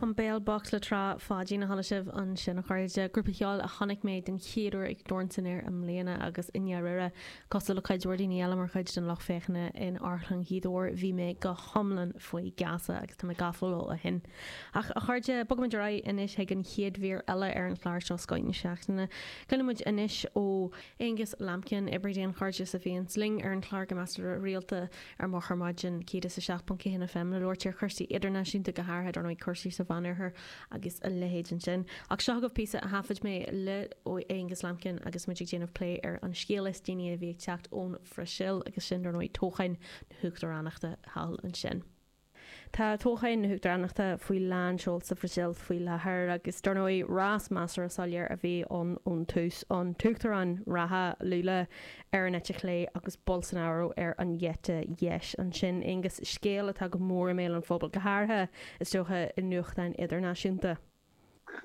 An Béal Bocht le Trá Pháidín a chuala sibh ansin a chairde, grúpa ceoil a chonaic mé den chéad uair ag Dorn San Aer i mbliana agus i ndáiríre, cosúil le cuid mhór daoine eile mar chuid den lucht féachana in Amharclann Ghaoth Dobhair, bhí mé go hiomlán faoi gheasa agus tá mé gafa leo ó shin. Ach a chairde, bogfaimid ar aghaidh anois chuig an chéad mhír eile ar an chlár seo, Scoth na Seachtaine. Cluinimid anois ó Aonghus Lambkin, oibrí daonchairdis a bhíonns linn ar an chlár go measartha rialta. Ar Maidin 107.1 FM le labhairt ar chursaí idirnáisiúnta go háirithe, dar ndóigh, cúrsaí sa Mheánoirthear agus a leithéid ansin. Ach seo agaibh píosa a thaifid mé le hAonghus Lambkin agus muid ag déanamh plé ar an scéal is déanaí a bhí ag teacht ón Bhrasaíl, agus sin, dar ndóigh, toghcháin na huachtaránachta thall ansin. Tá toghcháin na huachtaránachta faoi lán seol sa Bhrasaíl faoi láthair agus dar ndóigh rás measartha soiléir a bhí ann ón tús, an t-uachtarán reatha Lula ar an eite chlé agus Bolsonaro ar an eite dheis. Ansin, Aonghus, scéal atá go mór i mbéal an phobail, go háirithe, is dócha, i nuachtáin idirnáisiúnta.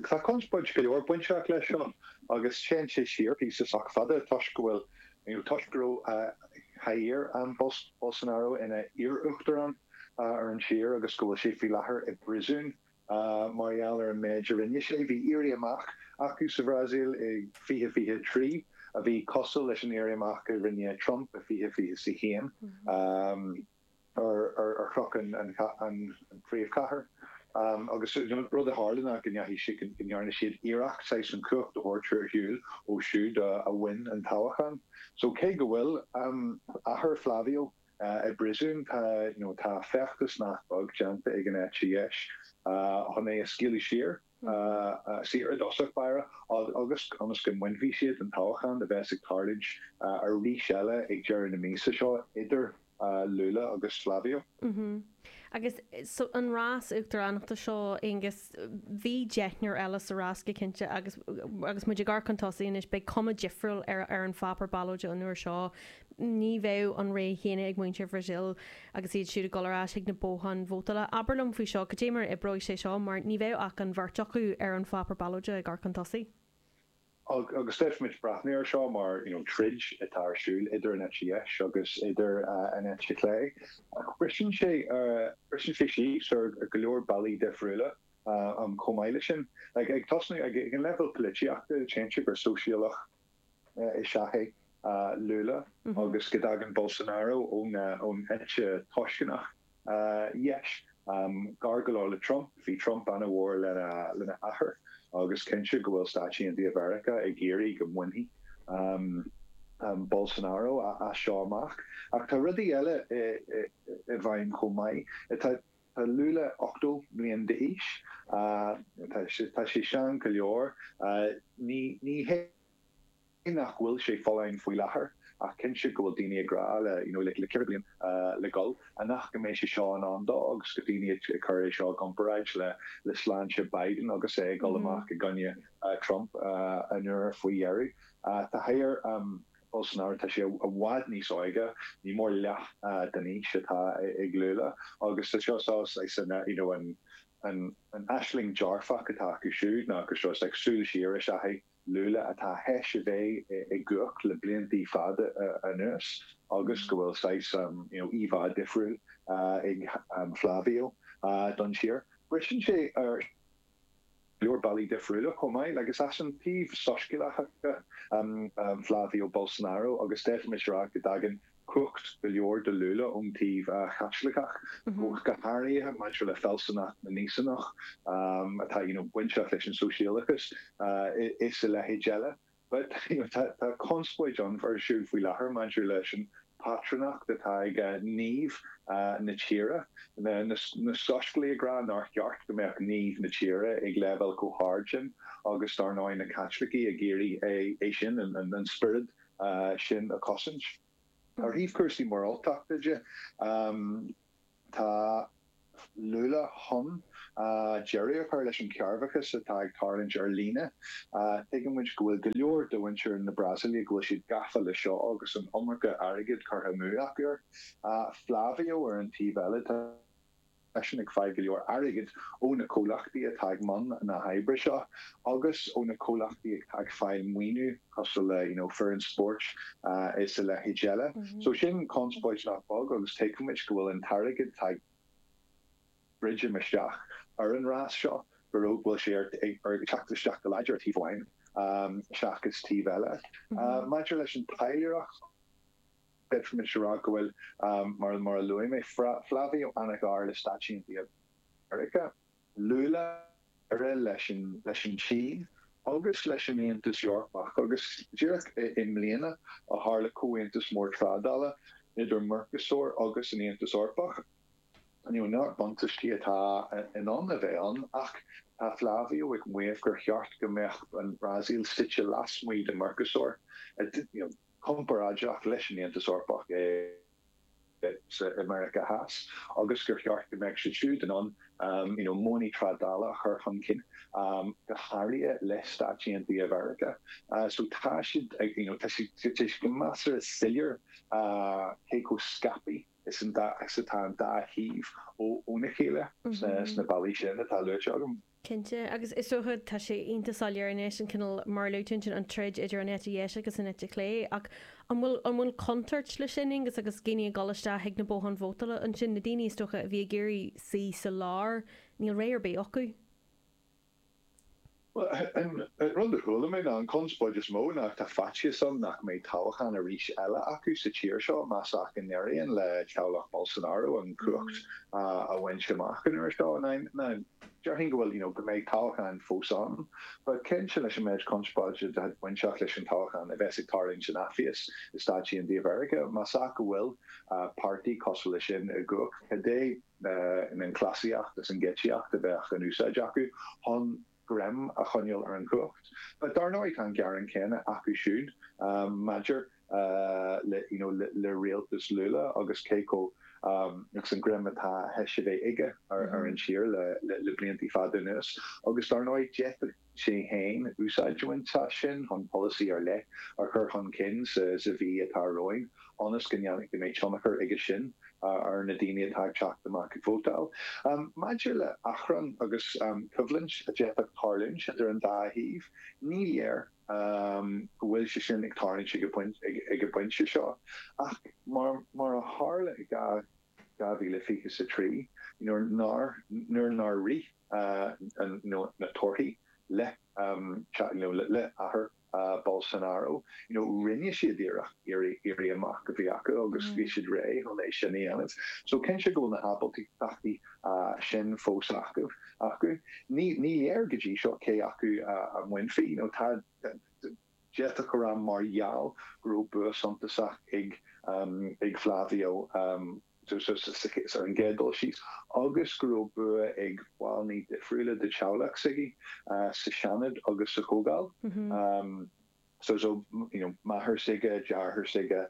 Tá conspóid go leor bainteach leis seo agus téann sé siar píosa sách fada toisc go bhfuil, nó toisc go raibh Jair Bolsonaro ina iar-uachtarán ar an tír agus go bhfuil sé faoi láthair i bpríosún mar gheall ar an méid a rinne sé. Bhí éirí amach acu sa Bhrasaíl i 2023 a bhí cosúil leis an éirí amach a rinne Trump i 2021. ar chnoc an phríomhchathair agus rud a tharla ná go ndeachaigh siad, go ndearna siad iarracht saghas an chumhacht a thabhairt ar shiúl ó siúd a bhain an toghchán. So cé go bhfuil athair Flavio i bpríosún tá, you know, tá feachtas nach beag déanta ag an eite dheis chun é a scaoileadh saor. saor i dtosach báire agus ionas go mbainfidh siad an toghchán a bheas ag tarlúint arís eile ag deireadh na míosa seo idir Lula agus Flavio. Agus so an rás uachtaránachta seo, Aonghus, bhí deichniúr eile sa rás go cinnte agus muid ag amharc chun tosaigh anois, beidh cuma difriúil ar an pháipéar ballóide an uair seo Ní bheidh an rogha chéanna ag muintir Bhrasaíl agus iad siúd ag dul ar ais chuig na botháin vótála. Abair liom faoi seo, cad é mar a oibreoidh sé seo, mar ní bheidh ach an bheirt acu ar an pháipéar ballóide ag amharc chun tosaigh. Agus féadfaimid breathnú air seo mar, you know, troid atá ar siúl idir an eite dheis agus idir an eite chlé. Ach briseann sé, briseann sé síos ar go leor bealaí difriúla chomh maith leis sin. Ag tosnú ag an leibhéal poilitíochta, téann sé gur sóisialach, is ea é, Lula, agus go dtagann Bolsonaro ón eite antoisceach dheis. Gar go leor le Trump, bhí Trump an-mhór lena athair, agus cinnte go bhfuil Stáit Aontaithe Mheiriceá ag iarraidh go mbainfidh Bolsonaro as seo amach. Ach tá rudaí eile i bhfeidhm chomh maith. Tá Lula 80 bliain d'aois. Tá sé sean go leor. Ní hé nach bhfuil sé folláin faoi láthair, ach cinnte go bhfuil daoine ag rá le ceithre bliain le dul amach go mbeidh sé seo in ann dó, agus go daoine ag cur é seo i gcomparáid le sláinte Biden agus é ag dul amach i gcoinne Trump an uair faoi dheireadh. Tá Flávio. Bolsonaro, tá sé i bhfad níos óige, ní mór leath den aois atá ag Lula, agus tá seo saghas you know an aisling dearfach atá acu siúd ná seo saghas like súil siar is ea é Lula atá théis a bheith i gcumhacht le bliantaí fada anuas agus go bhfuil saghas you know íomhá difriúil ag Flávio don tír. Braitheann sé ar. leor bealaí difriúla chomh maith, agus is ón taobh soiscéalach de, Flavio Bolsonaro, agus d'fhéadfaimis a rá go dtagann cumhacht go leor do Lula ón taobh Chaitliceach, go háirithe maidir le fealsúnacht na nÍosánach atá, you know, bainteach leis an sóisialachas is a leithéid eile. Bhuel, you know, tá, tá conspóid ann ar siúl faoi láthair maidir leis an bpátrúnacht atá ag naomh na tíre. Na, na, na Soiscéalaigh ag rá nár cheart go mbeadh naomh na tíre ag leibhéal chomh hard sin agus dár ndóigh na Caitlicigh ag iarraidh é, é sin, an, an, an spiorad sin a chosaint. Ar thaobh cúrsaí moráltachta de, Tá Lula chun deireadh a chur leis an chearrbhachas atá ag tarlúint ar líne. Tuigeann muid go bhfuil go leor de mhuintir na Brasaíle go bhfuil siad gafa leis seo agus an iomarca airgid curtha amú acu air. Flavio ar an taobh eile, tá seisean ag fáil go leor airgid ó na comhlachtaí atá i mbun na hoibre seo agus ó na comhlachtaí atá ag fáil maoiniú cosúil le, you know, foireann spóirt is a leithéid eile. So sin conspóid nach beag agus tuigimid go bhfuil an t-airgead tá ag druidim isteach ar an rás seo, go raibh, bhfuil sé ag teacht isteach go láidir ar thaobh amháin seachas taobh eile. Maidir leis an taidhleoireacht, d'fhéadfaimis a rá go bhfuil, mar a luaigh mé, Flavio ana-ghar le Stáit Aontaithe Mheiriceá. Lula, leis an tSín agus leis an Aontas Eorpach, agus díreach i mbliana a tharla comhaontas mór trádála idir Mercosur agus an tAontas Eorpach. Neart buntaistí atá in ann a bheith ann, ach tá Flávio ag maíomh gur cheart go mbeadh an Bhrasaíl suite lasmuigh de Mercosur, comparáideach leis an Aontas Eorpach. i Meiriceá Theas agus gur cheart go mbeadh siad siúd in ann modhanna trádála a chur chun cinn, go háirithe le Stáit Aontaithe Mheiriceá. So tá sé, tá sé go measartha soiléir cé chomh scaipthe is atá an dá thaobh óna chéile sna bealaí sin atá luaite agam. Cinnte. Agus is dócha, tá sé iontach soiléir anois, an cineál mar a luaigh tú ansin, an troid idir an eite dheis agus an eite chlé. Ach an bhfuil, an bhfuil contúirt leis sin, Aonghus, agus daoine ag dul isteach chuig na botháin vótála ansin, na daoine, is dócha, a bhí ag iarraidh suí sa lár, níl rogha ar bith acu? Bhuel, an rud a chuala mé ná an conspóid is mó ná go bhfuil faitíos ann nach mbeidh toghachán arís eile acu sa tír seo más ea go n-éiríonn le teaghlach Bolsonaro an chumhacht a bhaint amach an uair seo. Déarfainn go bhfuil, you know, go mbeidh toghcháin fós ann. But cinnte leis an méid conspóide atá bainteach leis an toghchán a bheas ag tarlúint an tseachtain seo i Stáit Aontaithe Mheiriceá? Más ea go bhfuil páirtí cosúil le sin i gcumhacht, cad é an cleasaíocht is an gáitsíocht a bheadh in úsáid acu chun greim a choinneáil ar an chumhacht? But dar ndóigh tá an gearán céanna acu siúd maidir le. le rialtas Lula agus cé acu agus an greim atá th'éis a bheith aige ar an tír le blianta fada anuas. Agus dar ndóigh d'fhéadfadh sé féin úsáid a bhaint as sin chun polasaí ar leith a chur chun cinn sa mhí atá romhainn ionas go mbeidh tionchar aige sin ar na daoine atá ag teacht amach ag vótáil. Maidir le achrann agus coimhlint a d'fhéadfadh tarlúint idir an dá thaobh, ní léir. go bhfuil sé sin ag tarlúint ag an bpointe seo. Ach mar a tharla i 2023, nuair nár éirigh na torthaí le athair Bolsonaro, rinne siad iarracht, éirí amach a bheith acu agus bhí siad réidh chun é sin a dhéanamh. So, cinnte go bhfuil na hábaltachtaí sin fós acu. Ní léir go dtí seo cé acu a mbainfí, nó tá, d'fhéadfadh go raibh mar gheall go raibh bua suntasach ag Flavio ar an gcéad dul síos, agus go raibh bua ag baill difriúla de theaghlach s'aige, sa Seanad agus sa Chomhdháil. Máthair s'aige, deartháir s'aige,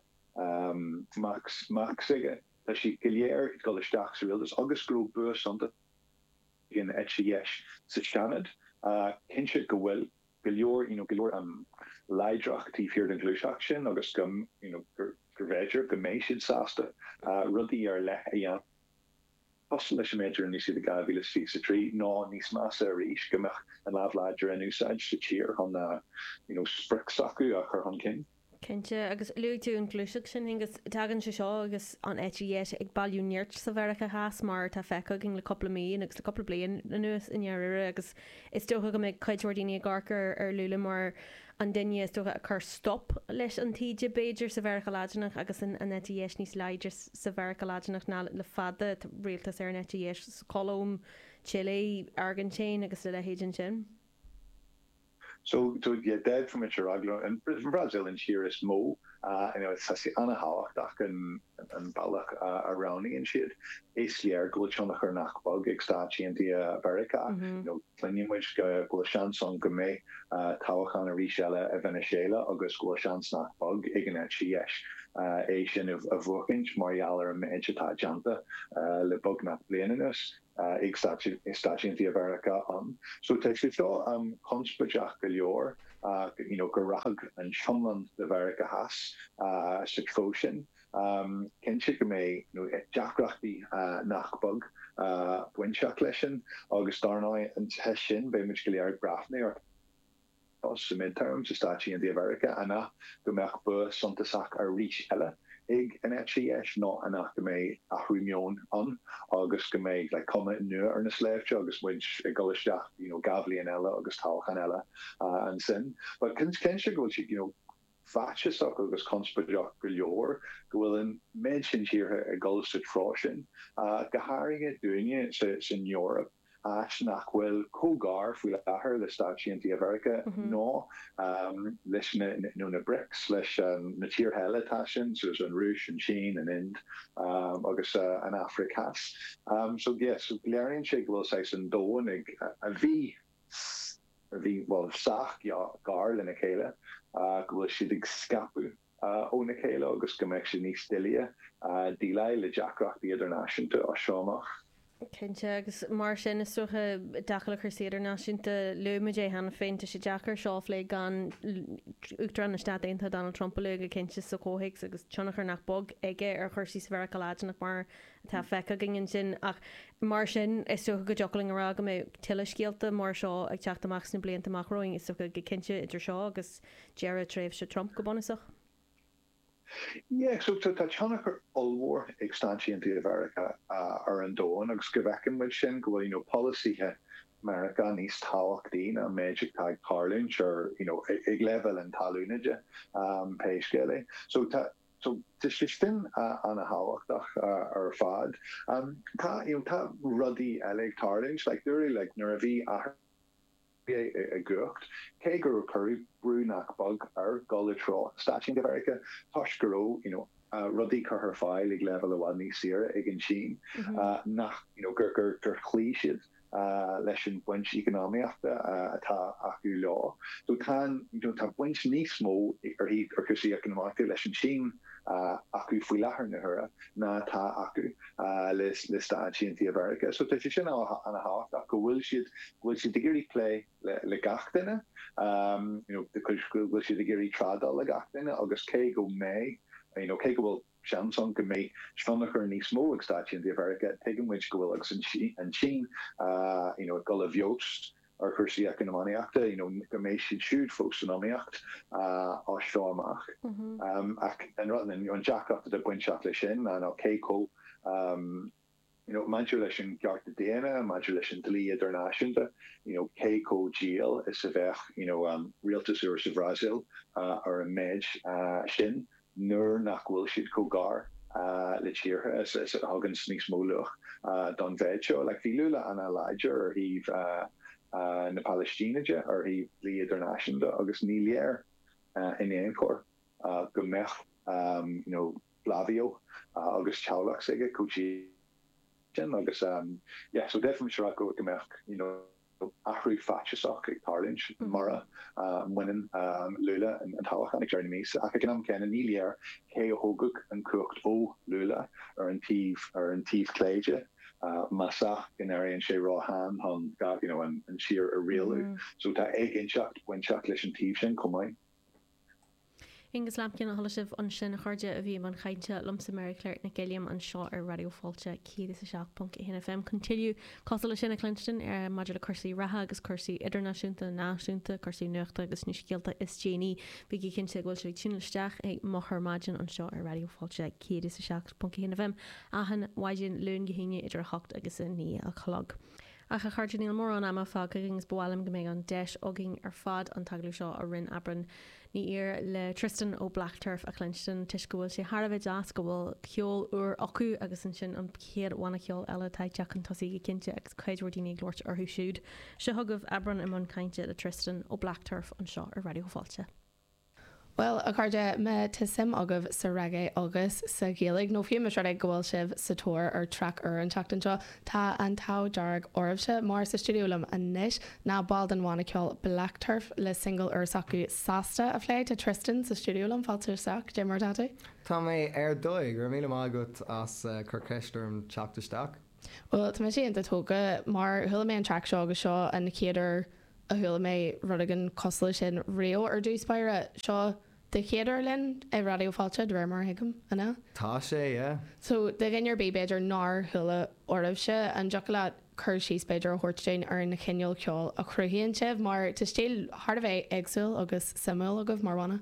mac s'aige. Tá siad go léir ag dul isteach sa rialtas agus go raibh bua suntasach ag an eite dheis sa Seanad. Cinnte go bhfuil go leor you know go leor láidreachta taobh thiar den ghluaiseacht sin agus go you know gurbh fhéidir go mbeidh siad sásta rudaí ar leith a dhéanamh cosúil leis an méid a rinne siad i 2023 nó níos measa arís go mbeadh an lámh láidir in úsáid sa tír chun you know sprioc s'acu a chur chun cinn. Cinnte, agus luaigh tú an ghluaiseacht sin, Aonghus, tagann sé seo agus an eite dheis ag bailiú nirt sa Mheiriceá Theas mar atá feicthe againn le cúpla mí, nó agus le cúpla bliain anuas i ndáiríre, agus is dócha go mbeidh cuid mhór daoine ag amharc ar ar Lula mar an duine is dócha a chuir stop leis an taoide, b'fhéidir, sa Mheiriceá Laidineach agus an eite dheis níos láidre sa Mheiriceá Laidineach ná le fada, tá rialtas ar an eite dheis sa Cholóim, Chile, Airgintín agus a leithéid ansin. So, so yeah, d'fhéadfadh muid a rá gurb í an Bhrasaíl an tír is mó uh anyway tá sé an-tábhachtach an an bealach a roghnaíonn siad. Is léir go bhfuil tionchar nach beag ag Stáit Aontaithe Mheiriceá. You know cluinfidh muid go bhfuil seans ann go mbeidh uh toghchán arís eile i Veiniséala agus go bhfuil seans nach beag ag an eite dheis uh é sin a bhuachaint mar gheall ar an méid atá déanta uh le beagnach bliain anuas. ag Stáit Aontaithe Mheiriceá ann. So tá sé seo conspóideach go leor ach you know go rachadh an t-iomlán de Mheiriceá Theas sa treo sin, cinnte go mbeidh you know deacrachtaí nach beag bainteach leis sin agus dar ndóigh an teist ansin beidh muid go léir ag breathnú air. Tá na midterms sa Stáit Aontaithe Mheiriceá an amhlaidh go mbeadh bua suntasach arís eile ag an eite dheis, nó an amhlaidh go mbeidh athrú meoin ann agus go mbeidh like cuma nua ar na sléibhte agus muid ag dul isteach you know dhá bhliain eile agus toghchán eile ansin. But is cinnte go bhfuil siad you know faitíosach agus conspóideach go leor go bhfuil an méid sin tíortha ag dul sa treo sin, go háirithe dúinne san Eoraip. áit nach bhfuil chomh gar faoi láthair le Stáit Aontaithe Mheiriceá nó leis na nó na Brics, leis na tíortha eile atá sin, so an Rúis, an tSín, an Ind agus an Afraic Theas. So yes, léiríonn sé go bhfuil saghas an domhain ag a bhí, a bhí, bhuel sách gar lena chéile, go bhfuil siad ag scaipeadh. óna chéile agus go mbeadh sé níos doilighe déileáil le deacrachtaí idirnáisiúnta as seo amach. Cinnte, agus mar sin, is dócha, i dtaca le cúrsaí idirnáisiúnta, luaigh muid é cheana féin, tá sé deacair seo a phlé gan Uachtarán na Stát Aontaithe Donald Trump a lua go cinnte sa chomhthéacs agus tionchar nach beag aige ar chúrsaí sa Mheiriceá Laidineach mar atá feicthe againn ansin ach mar sin, is dócha go dtiocfadh linn a rá go mbeidh tuilleadh scéalta mar seo ag teacht amach sna blianta amach romhainn, is dócha go cinnte idir seo agus. Deireadh tréimhse Trump, go bunúsach. Yeah, so tá tionchar ollmhór ag Stáit Aontaithe Mheiriceá ar an domhan agus go bhfeiceann muid sin, go bhfuil, you know, polasaithe Mheiriceá níos tábhachtaí ná an méid atá ag tarlúint ar, you know, ag leibhéal an talún, aon, pé scéal é. So tá, so tá sé sin ana-thábhachtach ar fad. Tá, you know, tá rudaí eile ag tarlúint, like, dúradh, like, nuair a bhí athrú. Bhí i gcumhacht, cé go raibh cuireadh brú nach beag air dul i dtreo Stáit Aontaithe Mheiriceá toisc go raibh you know rudaí curtha ar fáil ag leibhéal i bhfad níos saoire ag an tSín, nach you know gur chloígh siad leis an bhaint eacnamaíochta atá acu leo. So tá you know tá baint níos mó ar an, ar chúrsaí eacnamaíochta, leis an tSín. acu faoi láthair na huaire ná atá acu le Stáit Aontaithe Mheiriceá. So tá sé sin ana thábhachtach go bhfuil siad go bhfuil siad ag iarraidh plé le gach duine you know go bhfuil siad ag iarraidh trádáil le gach duine agus cé go mbeidh you know cé go bhfuil seans ann go mbeidh tionchar níos mó ag Stáit Aontaithe Mheiriceá tuigeann muid go bhfuil leis an tSín you know ag dul i bhfeabhas ar chúrsaí eacnamaíochta, you know go mbeidh siad siúd fós san iomaíocht as seo amach. Ach an rud, you know an deacracht atá bainteach leis sin ná you know cé chomh you know maidir leis na cearta daonna, maidir leis an dlí idirnáisiúnta, you know cé chomh dian is a bheadh you know rialtas úr sa Bhrasaíl ar an méid sin. nuair nach bhfuil siad chomh gar le tíortha a thuganns níos mó luach don mhéid seo. Bhí Lula ana láidir ar thaobh na Palaistíne de, ar thaobh dlí idirnáisiúnta, agus ní léir in aon chor go mbeadh Flavio agus teaghlach s'aige chomh dian sin. athrú faitíosach ag tarlúint mura mbaineann Lula an toghchán ag deireadh na míosa, ach ag an am céanna ní léir cé a thógfadh an chumhacht ó Lula, ar an taobh ar an taobh clé de, más é go n-éiríonn sé ró-shean chun you know an tír a rialú. So tá éiginnteacht bainteach leis an taobh sin chomh maith. Aengus Lambkin, a chuala sibh ansin a chairde a bhí i mbun cainte liomsa Máire Clár Nic Uilliam anseo ar Raidió Fáilte 107.1 FM chun tuilleadh cosúil leis sin a chluinstin ar maidir le cúrsaí reatha agus cúrsaí idirnáisiúnta, náisiúnta, cúrsaí nuachta agus na scéalta is déanaí. Bígí cinnte go bhfuil sibh ag tiúnáil isteach ag Meon na Maidine anseo ar Raidió Fáilte 107.1 FM achan mhaidin Luain go hAoine idir 8 agus 9 a chlog. Ach, a chairde, níl mórán ama fágtha againn is ba mhaith liom go mbeidh an deis againn ar fad an t-agallamh seo a rinne Aibreán Ní Ír le Tristan ó Blackturf a chluinstin toisc go bhfuil sé thar a bheith deas go bhfuil ceol úr acu agus ansin an chéad bhanna ceoil eile atá ag teacht chun tosaigh go cinnte agus cuid mhór daoine ag labhairt orthu siúd. Seo chugaibh Aibreán i mbun cainte le Tristan ó Blackturf anseo ar Raidió Fáilte. Bhuel, a chairde, má tá suim agaibh sa reggae agus sa Ghaeilge, nó fiú más rud é go bhfuil sibh sa tóir ar thraic úr an tseachtain seo, tá an t-ádh dearg oraibhse, mar sa stiúideo liom anois ná baill den bhanna ceoil Black Turf, le singil úr s'acu Sásta a phlé. Tá Tristan sa stiúideo liom, fáilte isteach, cad é mar atá tú? Tá mé ar dóigh, go raibh míle maith agat as cur ceist orm teacht isteach. Bhuel, tá mise iontach tógtha, mar chuala mé an traic seo agus seo an chéad uair a chuala mé rud éigin cosúil leis sin riamh ar dtús báire, seo do chéad uair linn i Raidió Fáilte, de réir mar a thuigim, an ea? Tá sé, yeah. So, do dhuine ar bith, b'fhéidir, nár chuala oraibhse, an dtiocfadh leat cur síos, b'fhéidir, a thabhairt dúinn ar an chineál ceoil a chruthaíonn sibh, mar tá stíl thar a bheith éagsúil agus suimiúil agaibh mar bhanna.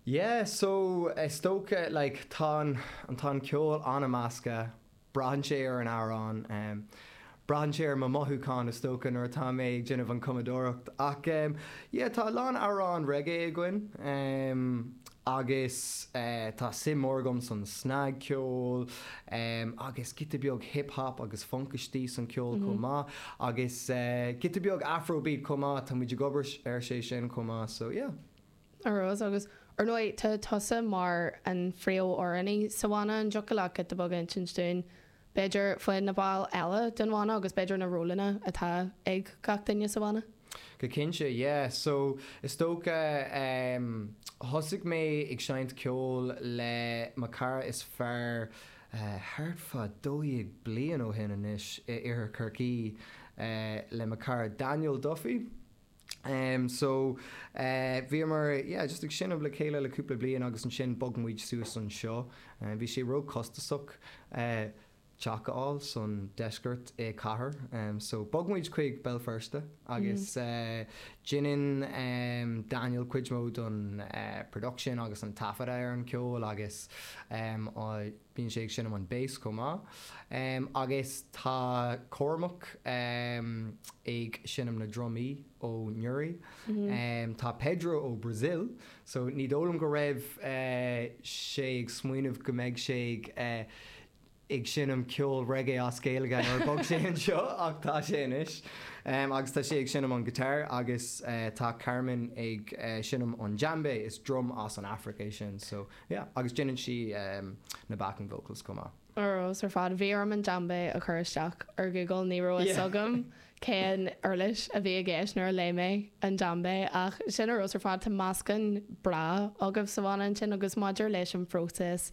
Yeah, so, is dócha, like, tá an, tá an ceol an-measctha Braitheann sé ar an amhrán. Braitheann sé ar mo mhothúcháin is dócha nuair atá mé ag déanamh an cumadóireacht. Ach yeah tá a lán amhráin reggae againn. Agus tá suim mór agam san snagcheol. Agus giota beag hip hop agus funk istigh san ceol chomh maith. Agus giota beag afrobeat chomh maith. Tá muid ag obair ar sé sin chomh maith so yeah. Ar dóigh, agus ar ndóigh, tá tusa mar an phríomhamhránaí sa bhanna, an dtiocfadh leat giota beag a insint dúinn, b'fhéidir, faoi na baill eile den bhanna agus b'fhéidir na rólanna atá ag gach duine sa bhanna? Go cinnte, yeah. So, is dócha, em, thosaigh mé ag seinnt ceoil le mo chara is fearr, eh, thart fá dó dhéag bliain ó shin anois, in Iarthar Chorcaí, eh, le mo chara Daniel Duffy. So, bhíomar, yeah, just ag seinm le chéile le cúpla bliain agus ansin bhog muid suas anseo. Bhí sé ró-chostasach teach a fháil san deisceart i cathair so bhog muid chuig Béal Feirste agus deineann Daniel cuid mhór den production agus an taifeadadh ar an ceol agus Bíonn sé ag seinm an bass chomh maith. Agus tá Cormac ag seinm na drumaí ó Newry. Tá Pedro ó Brazil, so ní dóigh liom go raibh sé ag smaoineamh go mbeidh sé ag seinm ceol reggae as Gaeilge nuair a bog sé anseo, ach tá sé anois. Agus tá sé ag seinm an guitar, agus tá Carmen ag seinm an djembe, is drum as an Afraic é sin, so. Yeah, agus déanann sí na backing vocals chomh maith. Ar fheabhas ar fad. Bhí orm an djembe a chur isteach ar Google, ní raibh a fhios agam cén uirlis a bhí i gceist nuair a léigh mé an djembe, ach sin ar fheabhas ar fad. Tá meascán breá agaibh sa bhanna ansin, agus maidir leis an phróiseas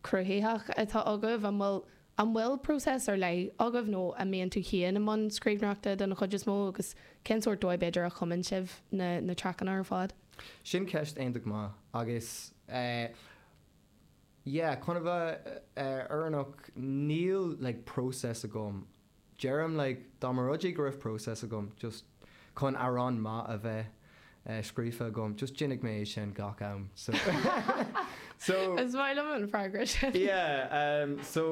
cruthaitheach atá agaibh, an bhfuil An bhfuil próiseas ar leith agaibh nó an mbíonn tú féin i mbun scríbhneoireachta den chuid is mó agus cén sórt dóigh b'fhéidir a chumann sibh na traiceanna ar fad? Sin ceist iontach maith agus yeah, chun a bheith fírinneach níl like próiseas agam, deirim like dá mba rud é go raibh process agam just chun amhrán maith a bheith eh scríofa agam just dhéanfadh mé é sin gach am so so Is maith liom an freagra sin. yeah em so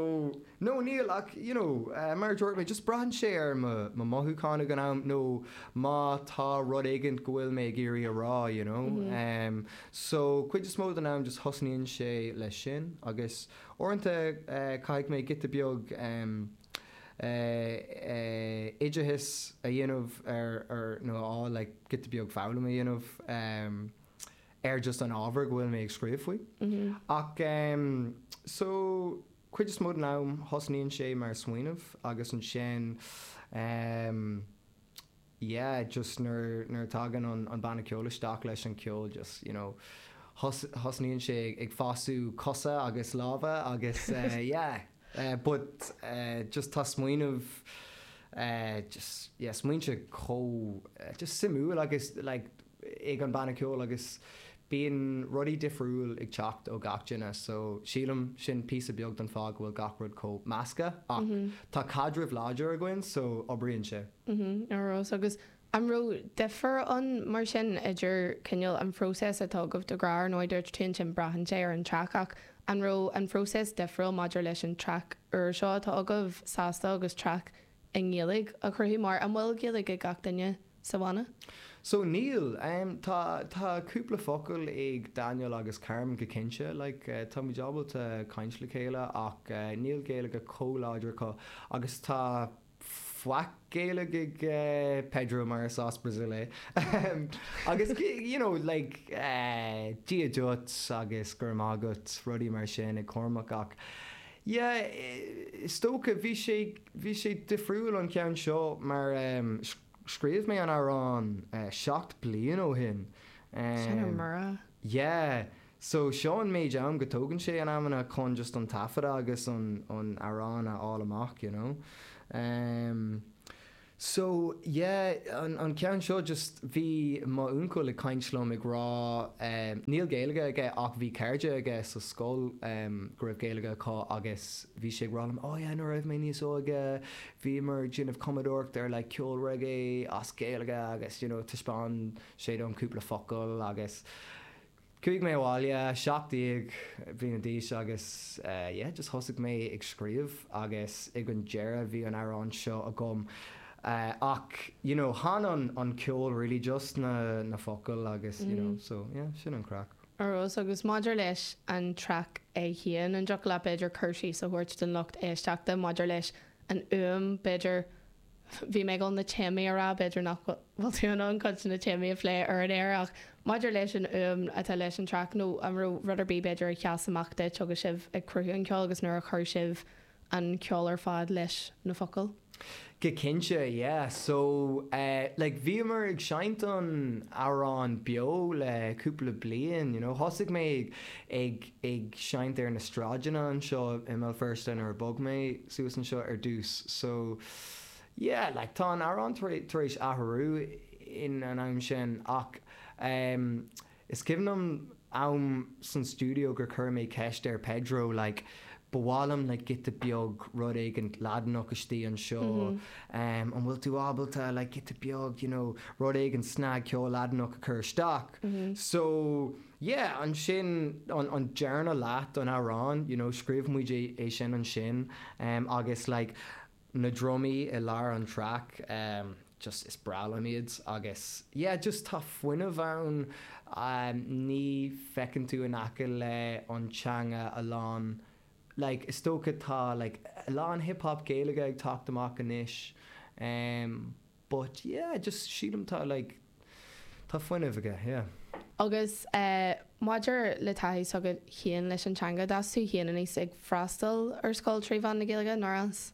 no níl ach you know eh mar a dúirt mé just braitheann sé ar mo mo mothúcháin ag an am nó má tá rud éigin go bhfuil mé ag iarraidh a rá you know em so cuid is mó den am just thosnaíonn sé leis sin agus uaireanta eh caithfidh mé giota beag em oideachas a dhéanamh air nó a fháil like giota beag foghlama a dhéanamh ar just an ábhar go bhfuil mé ag scríobh faoi. Ach em so chuid is mó den am thosnaíonn sé mar smaoineamh agus ansin em. yeah just nuair nuair a tagann an an banna ceoil isteach leis an ceol just you know thos thosnaíonn sé ag fasú cosa agus lámha agus eh yeah eh but eh just tá smaoineamh eh just yeah smaointe chomh just suimiúil agus like ag an banna ceoil agus bíonn rudaí difriúil ag teacht ó gach duine so sílim sin píosa beag don fáth go bhfuil gach rud chomh measctha ach tá caidreamh láidir againn so obríonn sé. Ar ndóigh, Agus an raibh difear ann mar sin idir cineál an phróiseas atá agaibh de ghnáth, ar ndóigh dúirt tú ansin braitheann sé ar an traic ach an raibh an phróiseas difriúil maidir leis an traic úr seo atá agaibh, Sásta, agus traic i nGaeilge a chruthú mar, an bhfuil Gaeilge ag gach duine sa bhanna? So, níl. Tá, tá cúpla focal ag Daniel agus Carmen go cinnte, like, tá muid ábalta caint le chéile ach níl Gaeilge chomh láidir acu agus tá faic Gaeilge ag Pedro mar is as Brazil é agus you know, like, dia duit agus go raibh maith agat, rudaí mar sin ag Cormac ach, Yeah, is dócha. Bhí sé, bhí sé difriúil an ceann seo mar ehm, scríobh mé an amhrán eh seacht bliain ó shin. Sin ar Ehm, mire. yeah. So seo an méid am go tógann sé in amanna chun just an taifeadadh agus an, an amhrán a fháil amach, you know. Ehm. So, yeah, an, an ceann seo just, bhí mo uncail ag caint liom ag rá, ehm, níl Gaeilge aige ach bhí cairde aige sa scoil, ehm, go raibh Gaeilge acu agus bhí sé ag rá liom, oh yeah, nuair a raibh mé níos óige, bhíomar ag déanamh cumadóireacht ar like ceol reggae as Gaeilge agus, you know, taispeáin sé dom cúpla focal agus, Chuaigh mé abhaile, 17 bliana d'aois, agus yeah, just thosaigh mé ag scríobh, agus ag an deireadh bhí an amhrán seo agam. Ach you know, tháinig an ceol really just ó na focail agus you know, so yeah, sin an craic. Ar ndóigh, agus maidir leis an traic í féin, an dtiocfadh leat b'fhéidir cur síos a thabhairt don lucht éisteachta maidir leis an fhuaim, b'fhéidir, Bhí mé ag dul na téamaí a rá, b'fhéidir nach bhfuil tú in ann cuid de na téamaí a phlé ar an aer, ach maidir leis an fhuaim atá leis an traic, nó an raibh rud ar bith b'fhéidir a sheas amach duit agus sibh ag cruthú an cheoil agus nuair a chuir sibh an ceol ar fad leis na focail? Go cinnte, yeah. So, eh, like, bhíomar ag seinnt an amhráin beo le cúpla bliain, you know. Thosaigh mé ag, ag. ag seinnt ar na sráideanna anseo i mBéal Feirste nuair a bhog mé suas anseo ar dtús so yeah like tá an amhrán tar éis athrú in an am sin ach ehm is cuimhin liom em san stiúideo gur chuir mé ceist ar Pedro like ba mhaith liom like giota beag rud éigin Laidineach istigh anseo ehm an bhfuil tú ábalta like giota beag you know rud éigin snagcheol Laidineach a chur isteach so Yeah, ansin an, an dara leath don amhrán, you know, scríobh muid é, é sin ansin, em, agus like, na drumaí i lár an track, em, just is breá liom iad agus yeah, just tá fuinneamh ann, em, ní fheiceann tú in aice le an teanga a lán like, is dócha tá like, a lán hip hop Gaeilge ag teacht amach anois, em. But yeah, just sílim tá like tá fuinneamh aige, yeah. Agus eh maidir le taithí s'agat féin leis an teanga, d'fhás tú féin aníos ag freastal ar scoil trí mheán na Gaeilge, nár fhás?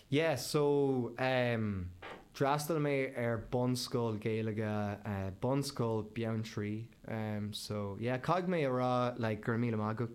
Yeah, so em d'fhreastail mé ar bunscoil Gaeilge, eh Bunscoil Bheanntraí, em so yeah caithfidh mé a rá like go raibh míle maith agat.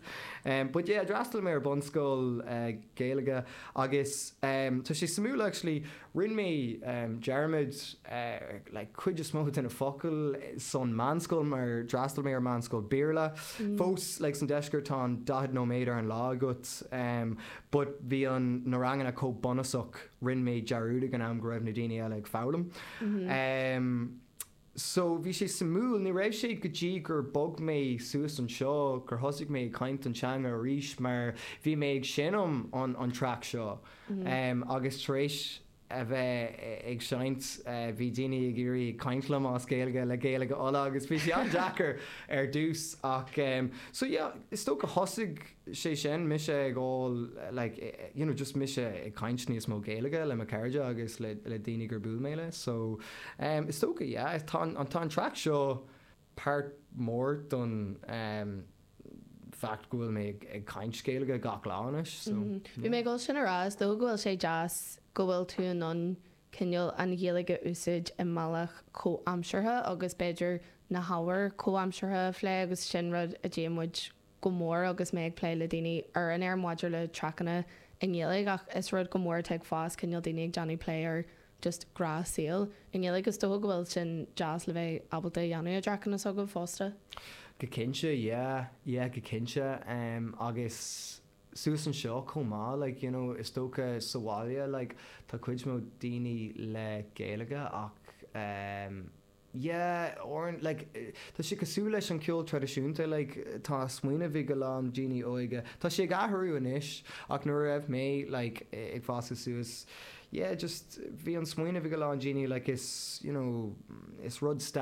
But yeah, d'fhreastail mé ar bunscoil Gaeilge agus tá sé suimiúil actually, rinne mé dearmad ar like cuid is mó de na focail sa mheánscoil mar d'fhreastail mé ar meánscoil Béarla. Fós like san deisceart tá an 40 nóiméad ar an lá agat but bhí an na ranganna chomh bunúsach rinne mé dearmad ag an am go raibh na daoine eile ag foghlaim. So, bhí sé suimiúil. Ní raibh sé go dtí gur bhog mé suas anseo gur thosaigh mé ag caint an teanga arís mar bhí mé ag seinm an an traic seo agus tar éis a bheith ag seinnt bhí daoine ag iarraidh ag caint liom as Gaeilge le Gaeilge Uladh agus bhí sé an-deacair ar dtús ach so yeah is dócha thosaigh sé sin, mise ag dul like you know just mise ag caint níos mó Gaeilge le mo cairde agus le le daoine gur buail mé leo so em is dócha yeah tá an tá an track seo páirt mór don em fact go bhfuil mé ag ag caint Gaeilge gach lá anois so bhí mé ag dul sin a rá is dócha go bhfuil sé deas go bhfuil tú in ann cineál an Ghaeilge a úsáid i mbealach comhaimseartha agus b'fhéidir na hábhair comhaimseartha a phlé agus sin rud a ndéanann muid go mór agus mé ag plé le daoine ar an aer maidir le traiceanna i nGaeilge ach is rud go mór atá ag fás, cineál daoine ag déanamh plé ar just gnáthshaol i nGaeilge. Is dócha go bhfuil sin deas le bheith ábalta a dhéanamh i dtraiceanna s'agaibh fosta? Go cinnte, yeah, yeah, go cinnte. Em, agus suas anseo chomh maith, like, you know, is dócha sa bhaile, like, tá cuid mór daoine le Gaeilge ach, em, Yeah, oh right, like, tá sé cosúil leis an ceol traidisiúnta, like, tá smaoineamh ag a lán daoine óige, tá sé ag athrú anois, ach nuair a raibh mé, like, ag fásadh suas, yeah, just, bhí an smaoineamh ag a lán daoine, like, is, you know, is rud stairiúil,